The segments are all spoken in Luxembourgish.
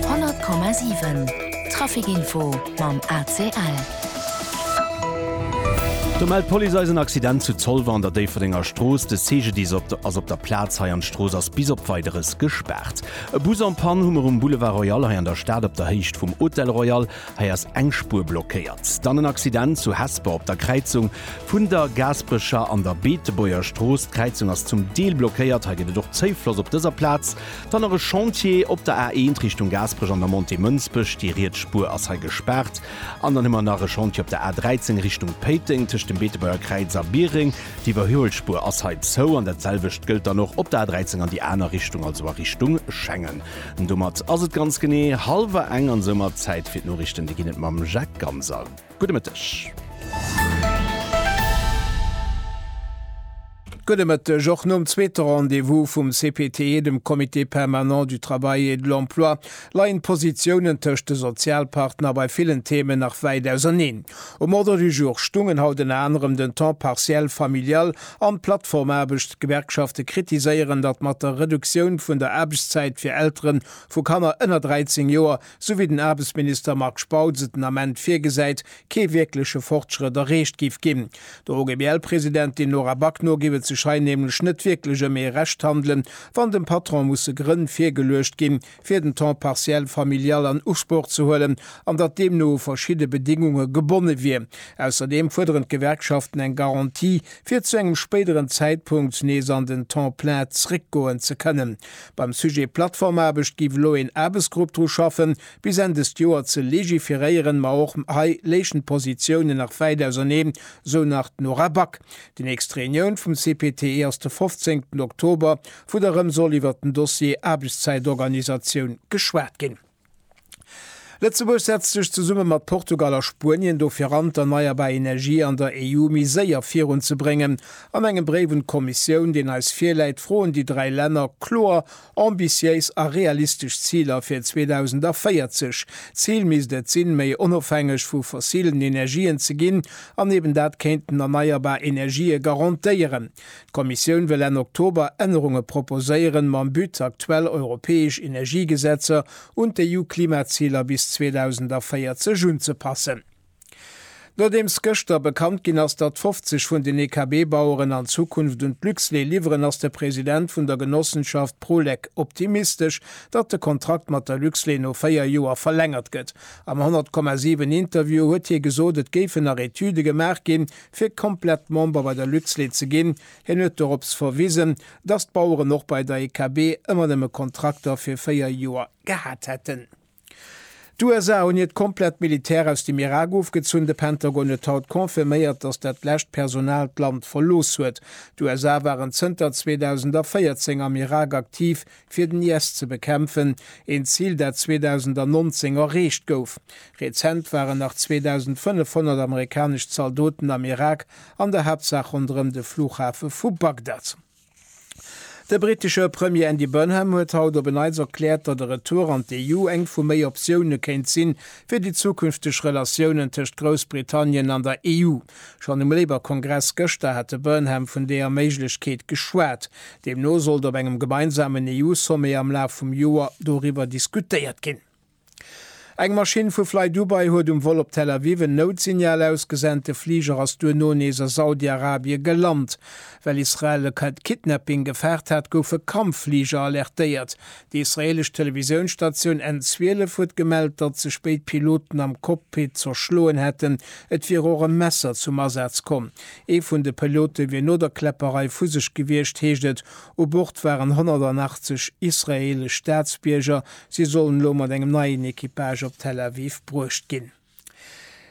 100,7 Trafic info mam ACL. Do mellt d'Police eis en Accident zu Zolwer an der Déifferdenger Strooss. De CGDIS ass op der ass op der Plaz hei an d'Strooss ass bis op Weideres gespaart. E Bus en Panne hu mer um Boulevard Royal hei an der Stad op der Héicht vum Hôtel Royal. Hei ass eng Spuer blockéiert. Dann en Accident zu Hesper op der Kräizung vun der Gaasperecher an der Beetebuerger Strooss. D'Kräizung ass zum Deel blockéiert. Hei gëtt et och Zouffloss op dëser Plaz. Dann nach e Chantier op der A1 Richtung Gaasperech an der Montée Mënsbech. Déi riets Spuer ass hei gespaart. An dann hu mer nach e Chantier op der A13 Richtung Péiteng tëscht dem Beetebuerger Kräiz a Biereng. D'Iwwerhuelspuer ass hei zou. An dat selwecht gëllt dann och op der A13 an déi aner Richtung, also a Richtung Schengen. Domat ass et ganz genee hallwer eng an soumat Zäit fir d'Noriichten. Déi ginn et mam Jacques Ganser. Gudde Mëtteg. Gudde Mëtteg. Och nom zweete Rendez-vous vum CPTE, dem Comité permanent du travail et de l'emploi, leien d'Positiounen tëscht de Sozialpartner bei villen Themen nach wäit auserneen. Um Ordre du jour stungen haut ënner anerem den Temps partiel familial, An d'Plattformaarbecht, D'Gewerkschafte kritiséieren, datt mat der Reduktioun vun der Aarbechtszäit fir Eltere vu Kanner ënner 13 Joer, sou wéi den Aarbechtsminister Marc Spautz et den Ament virgesäit, kee wierkleche Fortschrëtt erreecht géif ginn. Der OGBL-Presidentin Nora Back no géif et sech hei nämlech net wierklech ëm ee Rechthandelen, wann dem Patron musse Grënn virgeluecht ginn, fir den Temps partiel familial an Usproch ze huelen, an datt deemno u verschidde Bedingunge gebonne wier. Ausserdeem fuerderen d'Gewerkschaften eng Garantie, fir zu engem spéideren Zäitpunkt nees an den Temps plein zréckgoen ze kënnen. Beim Sujet Plattformaarbecht géif elo een Aarbechtsgrupp dru schaffen, bis Enn dëst Joer ze legiferéieren, ma och hei léichen d'Positiounen nach wäit auserneen, sou nach d'Nora Back. Déi nächst Reunioun vum CPTE ass de 15 Oktober wou da rëm soll iwwert den Dossier Aarbechtszäitorganisatioun geschwat ginn. Lëtzebuerg setzt sech zesumme mat Portugal a Spuenien dofir an, d'erneierbar Energie an der EU méi séier virun ze bréngen. An engem Bréif un d'Kommissioun, deen eis virläit, froen déi dräi Länner kloer ambitiéis a realistesch Ziler fir 2040. D'Zil misst et sinn, méi onofhängeg vu fossilen Energien ze ginn an eben dat kéinten erneierbar Energië garantéieren. D'Kommissioun wëll Enn Oktober Ännerunge proposéieren, mam But, aktuell europäesch Energiegesetzer un d'EU-Klimaziler bis 2040 unzepassen. Nodeems gëschter bekannt ginn ass, datt 50 vun den EKB-Baueren an Zukunft un d'Luxlait liwweren, ass de President vun der Genossenschaft Prolec optimistesch, datt de Kontrakt mat der Luxlait no 4 Joer verlängert gëtt. Am 100,7 Interview huet hie gesot, et géifen nach Etüde gemaach ginn, fir komplett Member bei der Luxlait ze ginn. Hien huet dorops verwisen, datt d'Baueren och bei der EKB ëmmer nëmme Kontrakter fir véier Joer gehat hätten. D'USA hunn hiert komplett Militär aus dem Irak ofgezunn. De Pentagon huet haut confirméiert, datt dat lescht Personal d'Land verlooss huet. D'USA waren zënter 2014 am Irak aktiv, fir den IS ze bekämpfen, een Zil dat 2019 erreecht gouf. Rezent waren nach 2.500 amerikanesch Zaldoten am Irak, an der Haaptsaach ronderëm de Flughafe vu Bagdad. De brittesche Premier Andy Burnham huet haut op en Neits erkläert, datt e Retour an d'EU eng vu méi Optioune kéint sinn, fir déi zukünfteg Relatiounen tëscht Groussbritannien an der EU. Schonn um Labour-Kongress gëschter hat de Burnham vun deeër Méiglechkeet geschwat. Deemno sollt op engem gemeinsamen EU-Sommet am Laf vum Joer doriwwer diskutéiert ginn. Eng Maschinn vu FlyDubai huet um Vol op Tel Aviv en Noutsignal ausgesent. De Fliger ass duerno nees a Saudi-Arabie gelant. Well Israel e Kidnapping gefaart hat, goufe Kampffliger alertéiert. Déi israeelesch Televisiounstatioun N12 huet gemellt, datt sech béid Piloten am Cockpit zerschloen hätten. Et wier och e Messer zum Asaz komm. Ee vun de Pilote wier no der Kläpperei vu sech gewiescht, heescht et. U Bord waren 180 israeelesch Staatsbierger. Si sollen elo mat engem neien Equipage op Tel Aviv bruecht ginn.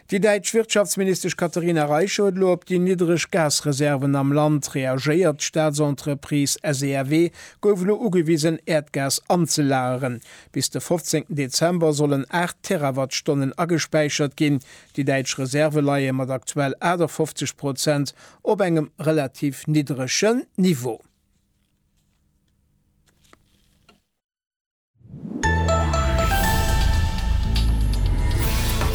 Déi däitsch Wirtschaftsministesch Katherina Reiche huet elo op déi niddreg Gasreserven am Land reagéiert. D'Staatsentreprise SEAW gouf elo ugewisen, Äerdgas anzelageren. Bis de 15 Dezember sollen 8 Terawattstonnen agespäichert ginn. Déi däitsch Reserve leie mat aktuell 58 Prozent op engem relativ niddregen Niveau.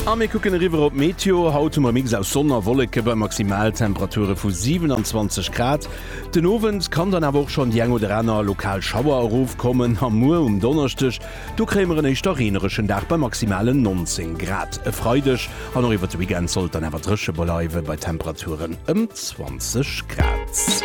A mir kucken eriwwer op d'Meteo. Haut hu mer e Mix aus Sonn a Wolleke bei Maximaltemperature vu 27 Grad. Den Owend kann dann awer och schonn déi eng oder aner lokal Schauer erofkommen. A muer um Donneschdeg, do kréie mer en éischter reenereschen Dag bei maximalen 19 Grad. E Freideg an och iwwert de Weekend soll et dann awer dréche bleiwen, bei Temperaturen ëm 20 Grad.